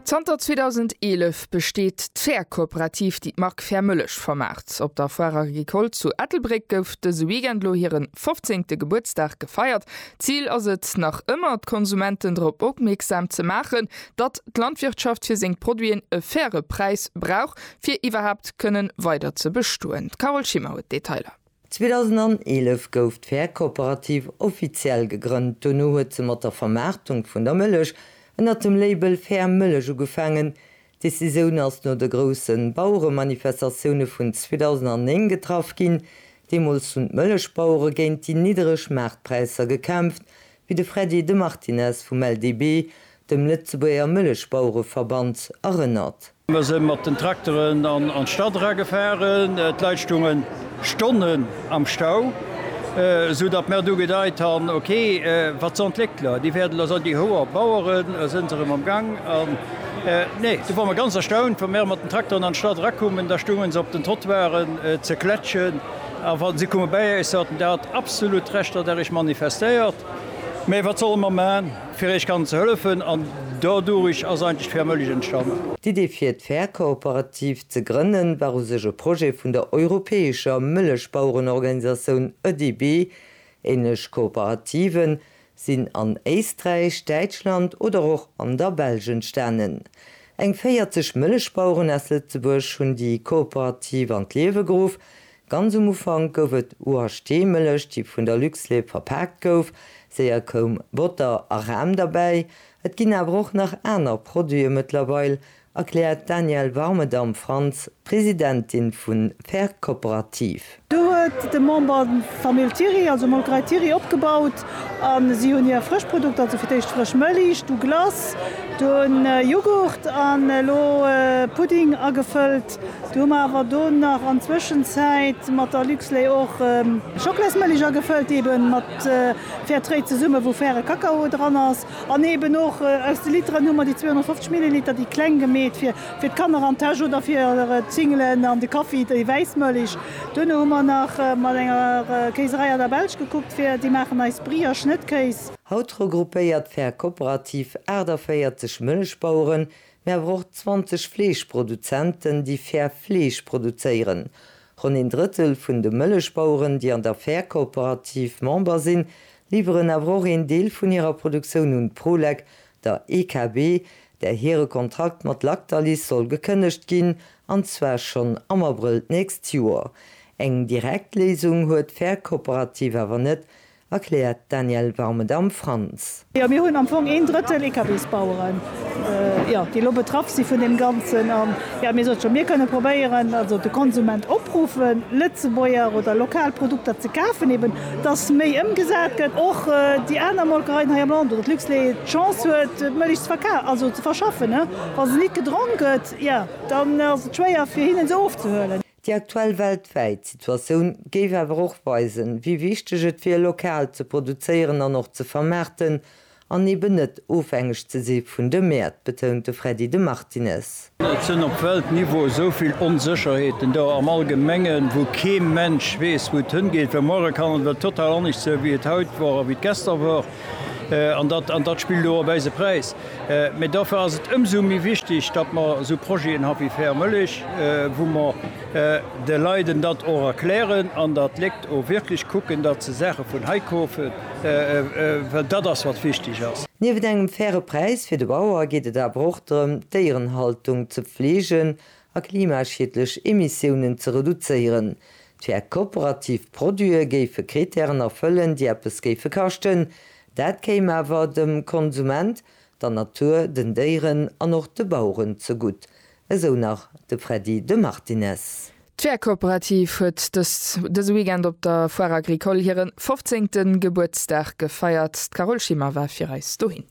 Zanter 2011 besteet d'Fäerkooperativ, déi d'Mark Fäermëllech vermaart. Op der Foire Agricole zu Ettelbréck gouf dëse Weekend lo hiren fofzéngte Gebuertsdag gefeiert. Zil ass et nach ëmmer, d'Konsumenten drop opmierksam ze maachen, datt d'Landwirtschaft fir seng Produiten e faire Präis brauch, fir iwwerhaapt kënnen weider ze bestoen. D'Carole Schimmer huet d'Detailer. 2011 gouf d'Fäerkooperativ offiziell gegrënnt. Dono huet se mat der Vermaartung vun der Mëllech ënner dem Label Fair Mëllech ugefaangen. D'Decisioun ass no de groussen Baueremanifestatioune vun 2009 getraff ginn. Deemools hunn d'Mëllechbauere géint déi niddereg Maartpräisser gekämpft, wéi de Freddy de Martinez vum LDB dem Lëtzebuerger Mëllechbauereverband erënnert. Mer se mat den Trakteren an d'Stad era gefaren. D'Leit stounge Stonnen am Stau, esou datt mer du gedeit han, ok, wat s'Entwéckler, déi wäerten elo soen, déi hoer Baueren sënn se erëm am Gang. An nee, du wor mer ganz erstaunt, wou mer mat den Trakteren an d'Stad erakummen, da stounge se op den Trottoiren ze klätschen. A wa si komme bäi Iech, sot en, Der hat absolut Recht, datt Der Iech manifestéiert, mä wat solle mer man, fir Iech kann ze hëllefen? An dodurich ass eigentlech d'Fair Mëllech entstanen. D'Idee fir d'Fair Kooperativ ze grënne war u sech e Projet vun der europäescher Mëllechbauerenorganisatioun ÖDB. Änlech Kooperativen, sinn an Éisträich, Däitschland oder och an der Belsch entstanen. Eng 40 Mëllechbaueren aus Lëtzebuerg hunn déi Cooperative an d'Liewe geruff. Ganz um Ufank gouf et UHT Mëllech, déi vun der Luxlait verpaakt gouf. Séier koum Botter a Ram derbäi. Et ginn awer och nach aner Produite mëttlerweil, erkläert d'Danièle Warmedam Franz, Presidentin vu Fair Cooperative. Do huet de Member d'Famill Thiry, also Molkerei Thiry opgebaut a si hunn hir frësch Produkter, also fir d'éischt frësch Mëlich, du Glace, dunn Jughurt an elo Pudding agefëllt. Du hu mer awer do nach an Zwëschenzäit mat der Luxlait och Schocklaismëlich agefëllt, eebe mat Fair Trade zesumme wou faire Kakao dran ass. An eben och aus de Literen hu mer déi 250 Milliliter, déi kleng gemeet fir d'Kanner an d'Täsch oder fir d'Singelen an de Kaffi, déi wäiss Mëlich. Duerno hu mer nach mat enger Kéiserei an der Belsch gekuckt, fir déi maachen eis Brie a Schnëttkéis. Haut regroupéiert d'Fair Cooperative 48 Mëlichbaueren, mee awer och 20 Fleeschproduzenten, déi fair Fleesch produzéieren. Ronn een Drëttel vun de Mëlichbaueren, déi an der Fair Cooperative Member sinn, liwweren awer och een Deel vun hirer Produktioun un d'Prolec, der EKB, där hire Kontrakt mat Lactalis soll gekënnegt ginn, an zwar schonn am Abrëll d'nächst Joer. Eng direkt Léisung huet d'Fair Cooperative awer net, erkläert d'Danièle Warmedam-Franz. Jo, mir hunn am Fong een Drëttel EKBs-Baueren. déi elo betraff si vun deem Ganzen. An jo, mir sote schonn, mir kënne probéieren, also de Konsument opruffen, Lëtzebuerger oder lokal Produkter ze kafen, eben dass méi ëmgesat gëtt, och déi aner Molkereien hei am Land oder d'Luxlait d'Chance huet, d'Mëllech ze verka-, also ze verschaffen. Wa se nit gedronk gëtt, jo, dann ass et schwéier, fir hinnen se ofzehuelen. Déi aktuell weltwäit Situatioun géif awer och weisen, wéi wichteg et wier, lokal ze produzéieren an och ze vermaarten an eben net ofhängeg ze si vun de Mäert, betount de Freddy de Martinez. Et sinn op Weltniveau esou vill Onsécherheeten do am Allgemengen, wou kee Mensch weess, wou et hëngeet, well muere kann et ewell total anescht sinn, wéi et haut wor a wéi et gester wor. An dat spillt elo op eise Präis. Mee dofir ass et ëmsou méi wichteg, datt mer esou Projeten ha wéi Fair Mëllech, wou mer de Leiden dat och erklären an datt d'Léckt o wierklech kucken, datt se Saache vun hei kofen, well dat ass wat wichteg ass. Nieft engem faire Präis fir de Bauer geet et awer och drëm, d'Déierenhaltung ze pfleegen a klimaschiedlech Emissiounen ze reduzéieren. D'fair kooperativ Produite géife Kritären erfëllen, déi eppes géife kaschten. Dat kéim awer dem Konsument, der Natur, den Déieren an och de Baueren zegutt, esou nach de Freddy de Martinez. D'fair kooperativ huet dëse Weekend op der Foire agricole hire fofzéngte Gebuertsdag gefeiert. D'Carole Schimmer war fir eis dohin.